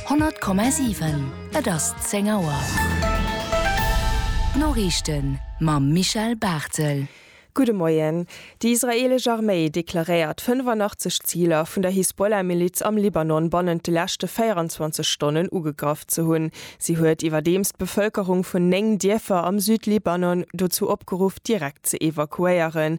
100,7 Et ass 10 Auer. D'Noriichten mam Michel Barthel. Gudde Moien. Déi israeelesch Arméi deklaréiert 85 Ziler vun der Hisbollah-Miliz am Libanon bannent de leschte 24 Stonnen ugegraff ze hunn. Si huet iwwerdeems d'Bevëlkerung vun 9 Dierfer am Südlibanon dozou opgeruff, direkt ze evakuéieren.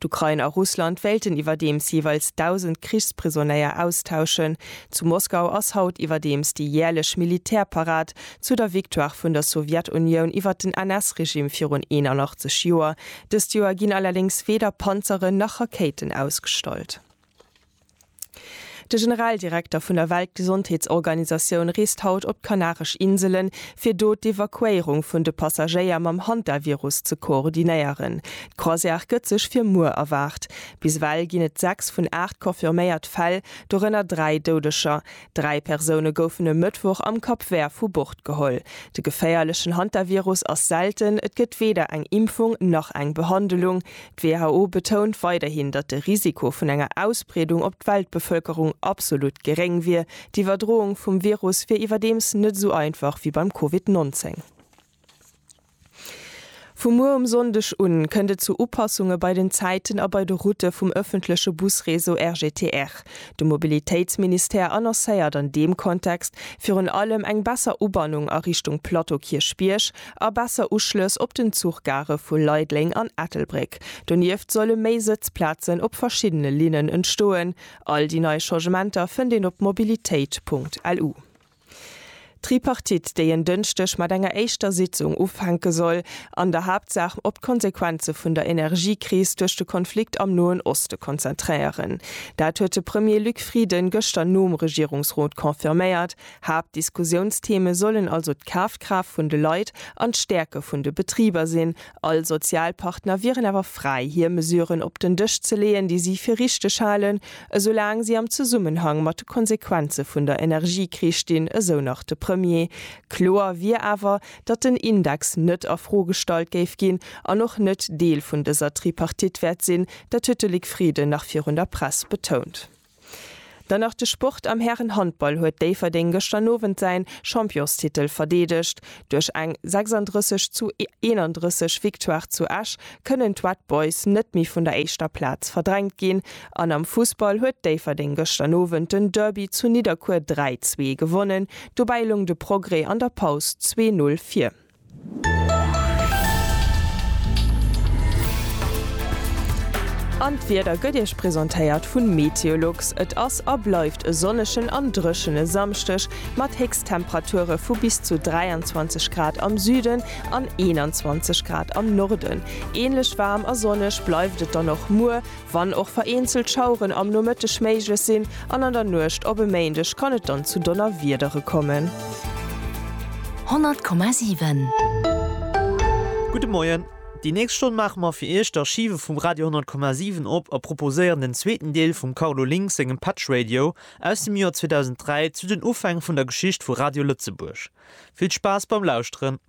D'Ukrain a Russland wéilten iwwerdeems jeeweils 1.000 Krichsprisonnéier austauschen. Zu Moskau ass haut iwwerdeems déi jäerlech Militärparad zu der Victoire vun der Sowjetunioun iwwer den NS-Regime virun 81 Joer. Dëst Joer ginn allerdéngs weder Panzeren nach Rakéiten ausgestallt. De Generaldirekter vun der Weltgesondheetsorganisatioun reest haut op d'Kanaresch Inselen, fir do d'Evakuéierung vun de Passagéier mam Hantavirus ze koordinéieren. D'Croisière gëtt sech fir muer erwaart. Bis ewell ginn et 6 vun 8 confirméiert Fäll, dorënner 3 Doudeger. Dräi Persoune goufen e Mëttwoch am Cap Vert vu Bord geholl. De geféierlechen Hantavirus ass selten, et gëtt weder eng Impfung nach eng Behandelung. D'WHO betount weiderhin, datt de Risiko vun enger Ausbreedung op d'Weltbevëlkerung absolut geréng wier. D'Iwwerdroung vum Virus wier iwwerdeems net esou einfach wéi beim Covid 19. Vu muer um Sonndeg un kënnt et zu Upassunge bei den Zäiten a bei de Routë vum ëffentleche Busreseau RGTR. De Mobilitéitsministère annoncéiert an deem Kontext virun allem eng besser Ubannung a Richtung Plateau Kierchbierg a besser Uschlëss op den Zuchgare vu Leideleng an Ettelbréck. Donieft solle méi Sëtzplazen op verschiddene Linnen entstoen. All déi nei Changementer fënnt een op mobilitéit.lu. D'Tripartite, déi en Dënschdeg mat enger éischter Sitzung ufänke soll, an der Haaptsaach op d'Konsequenze vun der Energiekris duerch de Konflikt am Noen Oste konzentréieren. Dat huet de Premier Luc Frieden gëschter nom Regierungsrot confirméiert. Haaptdiskussiounstheme sollen also d'Kafkraaft vun de Leit an d'Stäerke vun de Betriber sinn, All Sozialpartner wieren awer fräi, hir Mesuren op den Dësch ze leeën, déi si fir richteg halen, esoulaang si am Zesummenhang mat de Konsequenze vun der Energiekris stinn, esou nach de Premier. Kloer wier awer, datt den Index net a Fro gestallt géif ginn an och net Deel vun dëser Tripartite wäert sinn. Dat huet de Luc Frieden nach virun der Press betount. Dann nach de Sport, Am Härenhandball huet Déifferdeng gëschter Owend säi Championstitel verdeedegt. Duerch eng 36 zu 31 Victoire zu Esch kënnen d'Red Boys net méi vun der éischter Plaz verdrängt ginn. An am Fussball huet Déifferdeng gëschter Owend den Derby zu Nidderkuer 3, 2 gewonnen. Dobäi loung de Progrès an der Paus 2, 0 vir. An d'Wieder gëtt Iech presentéiert vun Meteolux. Et ass a bleift e sonnegen an dréchene Samschdeg mat Héchsttemperature vu bis zu 23 Grad am Süden an 21 Grad am Norden. Ähnlech waarm a sonneg bleift et dann och muer Wann och vereenzelt Schaueren am Nomëtteg méiglech sinn an an der Nuecht op e Méindeg kann et dann zu Donnerwiedere kommen. 100,7. Gudde Moien. Déi nächst Stonn maache mer fir Iech d'Archive vum Radio 100,7 op a proposéieren den zweeten Deel vum Carlo Link sengem Patch Radio aus dem Joer 2003 zu den Ufäng vun der Geschicht vu Radio Lëtzebuerg. Vill Spaass beim Lauschteren!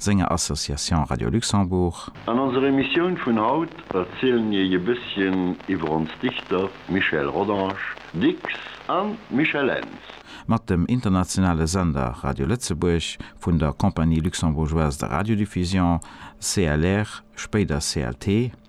senger Association Radio Luxembourg. An onser Emissioun vun haut erzielen iech e bësschen iwwer ons Dichter Michel Rodange, Dicks, an Michel Ends. Mat dem internationale Sender Radio Lëtzebuerg vun der Compagnie Luxembourgeoise de Radiodiffusion, CLR, spéider CLT,